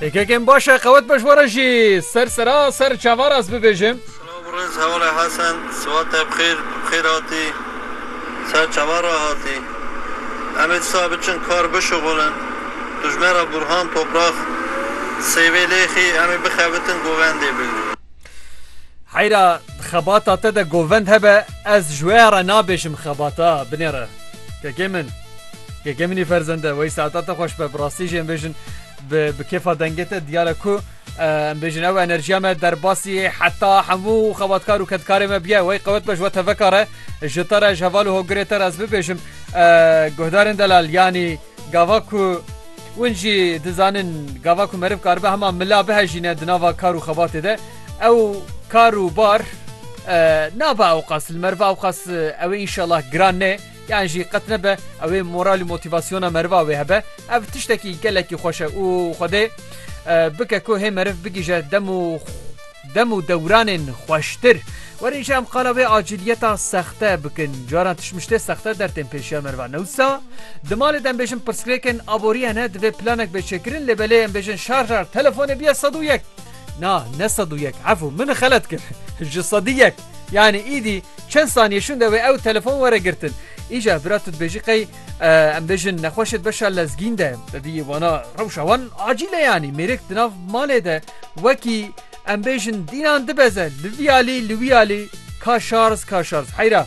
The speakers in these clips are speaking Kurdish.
Yekekên baş e qewet be ji we re jî ser sera ser çavar ez bibêjim. Silav riz hevalê Hesen siwat te bixêr bixêr hatî ser çavar re hatî em ê disa biçin kar bişuxulin tu ji me re Burhan Toprax sêvê lêxî em ê bixebitin govendê bigrin. Heyra xebata te de govend hebe ez ji we re nabêjim xebata binêre kekê min. Keke min î ferzende wey saeta te xweş be bi rastî jî em bêjin bi bi kêfa dengê te diyare ku em bêjin ew enerjiya me derbasî heta hemû xebatkar û kedkarê me biye wey qewet be ji we teveka re ji te re ji heval û hogirê te re ez bibêjim guhdarên delal yanî gava ku Win jî dizanin gava ku meriv karibe hema mila bihejîne di nava kar û xebatê de ew kar û bar nabe ewqas li meriva ewqas ewê înşelah giran nê Yan jî qet nebe ew ê moral û motîvasyona meriva wê hebe. Ev tiştekî gelekî xweş e û Xwedê bike ku hê meriv bigihîje dem û dem û dewranên xweştir. Werîn jî em qala wê acîliyeta sexte bikin. Caran tişmiştê sexte dertên pêşî ya merivan e. Wisa di malê de em bêjin pirsgirêkên aborî hene divê planek bê çêkirin lê belê em bêjin şarjar telefonê biye sed û yek. Na ne sed û yek efû min xelet kir ji sedî yek. Yanî îdî çend saniyê şûnde wê ew telefon were girtin. Îja bira tu dibêjî qey em bêjin nexweşê di beşa lezgîn de. Te dî yê wana rewşa wan acîl e yanî mêrik di nav malê de wekî em bêjin dînan dibeze li vî alî li wî alî ka şarz ka şarz heyra.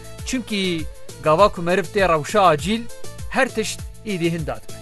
Çimkî gava ku meriv tê rewşa acîl, her tişt êdî hin dadibe.